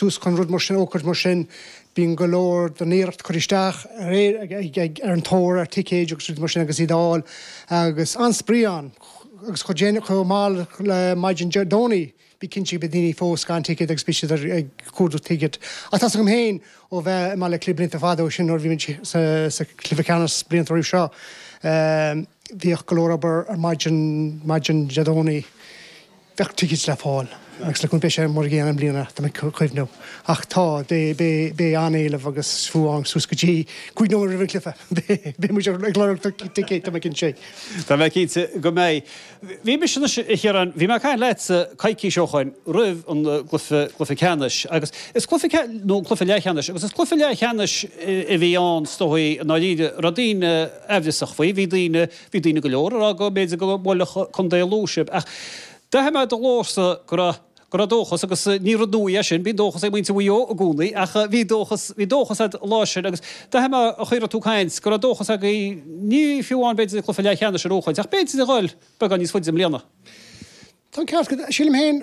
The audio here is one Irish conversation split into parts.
tús chun rud mar sin a fhógairt mar sin bíonn go leor den iarracht curtha isteach ar an tóir ar ticéid agus rudaí mar sin agus iad a fháil agus an-spraoi ann agus chomh déanach chomh mall le maidin Dé Domhnaigh bí cinnte go mbeidh daoine fós gan ticéad agus beidh siad ag cuardach ticéad ach tá's agam féin ó bheith i mBaile Átha Cliath blianta fada ó sin nuair a bhí muid sa sa cluiche ceannais blianta roimh seo bhíodh go leor obair ar maidin, maidin Dé Domhnaigh Bheadh tickets le fáil agus le cúnamh Dé beidh sé mar an gcéanna i mbliana, tá mé ag cuimhneamh. Ach tá, beidh an-éileamh agus fuadar suas go dtí cúig nóiméad roimh an cluiche. Beidh muid ag lorg ticéid, tá mé cinnte. Tá mé cinnte go mbeidh. Bhí mise anois, a Chiaráin, bhí mé ag caint leatsa coicís ó shoin roimh an gcluiche, cluiche ceannais agus is cluiche ceannais, nó cluiche leathcheannais, agus is cluiche leathcheannais a bhí ann, is dóigh, i ndáiríre. Raibh daoine amhrasach faoi, bhí daoine. Bhí daoine go leor a rá go mb'fhéidir go mbuailfeadh Contae Lú sibh, ach d'aithin mé ar do ghlórsa go raibh go raibh dóchas, agus ní rud nua é sin, bíonn dóchas ag muintir Mhaigh Eo i gcónaí, ach bhí dóchas, bhí dóchas agat an lá sin, agus d'aithin mé an chaoi a raibh tú ag caint, go raibh dóchas agaibh, ní fiú amháin b'fhéidir cluiche leathcheannais a bhuachaint, ach b'fhéidir a ghoil beagán níos faide i mbliana. Tá an ceart agat. Sílim féin,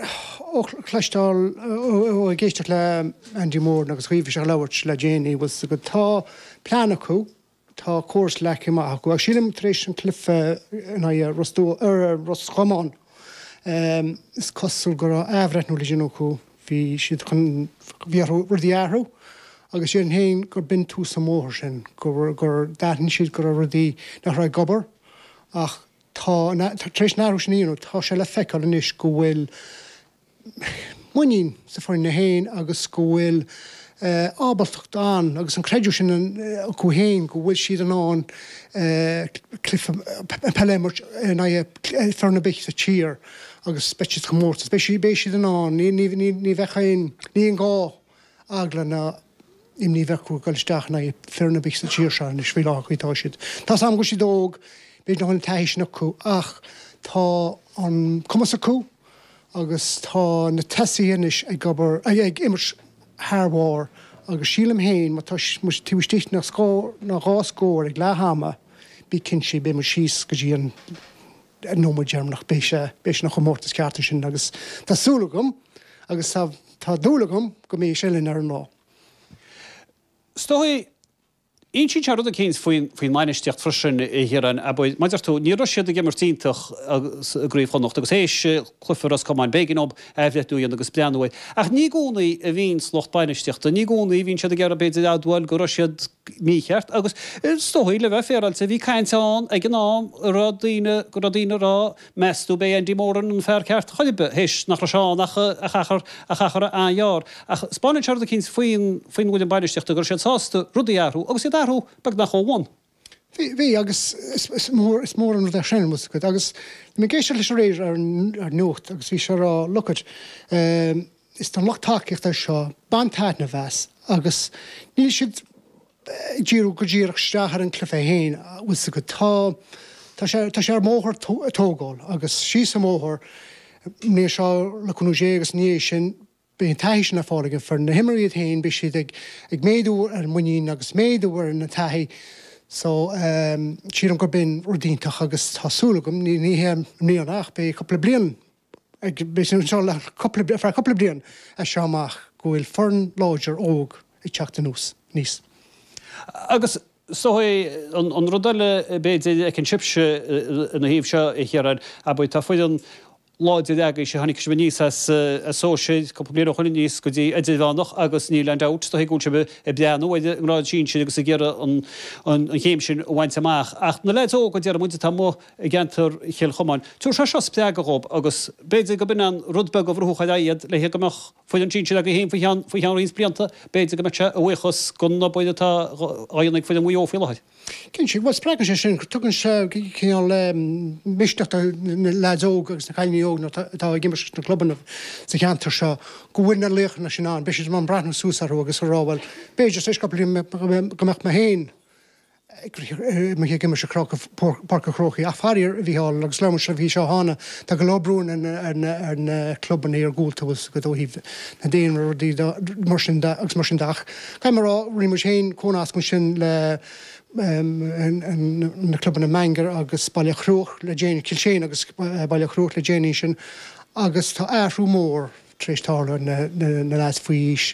ó chloisteáil, ó ag éisteacht le Andy Moran agus cibé cé atá ag labhairt le déanaí, bhfuil 's agat, tá plean acu, Tá córas leagtha amach acu agus sílim tar éis an cluife in aghaidh Ros Comáin, is cosúil go raibh athbhreithniú le déanamh acu, bhí siad chun, bhí orthu rudaí a athrú agus déarfainnse féin gur b'in tús an bhóthair sin, gur d'aithin siad go raibh rudaí nach raibh ag obair ach tá an, tar éis an athrú sin a dhéanamh tá sé le feiceáil anois go bhfuil, muinín sa fhoireann féin agus go bhfuil ábaltacht ann agus an creidiúint sin acu féin go bhfuil siad in ann cluiche peile a imirt in aghaidh foireann ar bith sa tír agus beidh siad sa chomórtas. Beidh siad in ann, ní bheidh aon ghá, eagla ná. imní a bheith acu ag dul isteach in aghaidh foireann ar bith sa tír seo anois, faoi láthair, faoi mar atá siad. Tá's agam go bhfuil siad óg, b'fhéidir nach bhfuil an taithí sin acu, ach tá an cumas acu agus tá na tosaithe anois ag obair, ag imirt thar bharr agus sílim féin má tá muid taobh istigh de scór nó dhá scór ag leath ama, bí cinnte, beidh muid síos go dtí an. nóiméad deireanach beidh sé ina chomórtas ceart ansin agus tá súil agam agus tá tá dúil agam go mbeidh sé linn ar an lá. Is dóigh, insíonn sé rud eicínt faoin faoin mbainistíocht freisin a Chiaráin, abair, mar a deir tú, ní raibh siad ag imirt iontach i gCraobh Chonnacht agus théis cluiche Ros Comáin b'éigean dóibh athbhreithniú a dhéanamh agus breathnú ar. Ach ní i gcónaí a bhíonns lucht bainistíochta, ní i gcónaí a bhíonn siad ag iarraidh b'fhéidir admháil go raibh siad, mícheart. Agus is dóigh, le bheith féaráilte, bhí caint ann ag an am an raibh daoine, go raibh daoine ag rá, meastú, an mbeidh Andy Moran an fear ceart chun oibre, théis nach raibh sé ann ach achar, ach achar an-ghearr. Ach 'speáineann sé rud eicínt faoin, faoin bhfoireann bainistíochta, go raibh siad sásta rudaí a athrú, agus iad a athrú beagnach ó bhun. Bhí, bhí, agus is, is mór, is mór an rud é sin, bhfuil 's agat. Agus bhí mé ag éisteacht leis aréir ar, ar nuacht agus bhí sé ag rá, look it, eh, Is don lucht tacaíochta ar seo baint taitneamh as agus níl siad ag díriú go díreach isteach ar an cluiche féin bhfuil 's agat. Tá tá sé ar mbóthar tógáil agus síos an bóthar an bhliain seo le cúnamh Dé agus ina dhiaidh sin beidh an taithí sin ar fáil ag an foireann. Na himreoirí iad féin beidh siad ag ag méadú ar an muinín agus méadú ar an taithí so sílim gurb in rud iontach agus tá súil agam ní ní hé i mbliana ach beidh cúpla bliain againn anseo le cúpla, feadh cúpla bliain as seo amach, go bhfuil foireann láidir óg ag teacht anuas, aníos agus. So an rud eile b'fhéidir a fheiceann sibhse ina thaobh seo, a Chiaráin, abair, tá foireann láidir agaibhse, tháinig sibh aníos as sóisir cúpla bliain ó shoin aníos go dtí idirmheánach agus níl aon dabht is dóigh, go bhfuil sibh ag breathnú ar an ngrád sinsir agus ag iarraidh an chéim sin a bhaint amach ach na leaids óga, déarfaimid, atá amuigh, i gceantar Chill Chomáin. Tabharfaidh sé seo spreagadh dhóibh agus b'fhéidir go b'in an rud beag a bhrúfadh ar aghaidh iad le go mbeadh foireann sinsir agaibh féin faoi cheann faoi cheann roinnt blianta. B'fhéidir go mbeadh sé a bhuíochas gon obair atá dhá dhéanamh ag foireann Mhaigh Eo faoi láthair. Cinnte, bhuel spreagann sé sin, tugann sé cineál misneach do na leaids óga agus na cailíní óga atá ag imirt leis na clubanna sa cheantar seo go bhfuil na laochanna sin ann. Beidh siad in ann breathnú suas orthu agus a rá bhuel, b'fhéidir tar éis cúpla bliain go mbeadh mé féin ag imirt i bPáirc an Chrócaigh ach faraor, a Mhícheál, agus labhair mé libh faoi seo cheana, tá go leor brú ar na clubanna iargúlta bhfuil a fhios agat ó thaobh an daonra, rudaí mar sin de agus mar sin de. Ach caithfidh mé a rá, rinne muid féin cónascadh ansin le na clubanna Beannchar agus Baile Chruaich le déanaí, Cill tSéadhna agus Baile Chruaich le déanaí ansin, agus tá athrú mór tar éis tarlú ar na lads faoi aois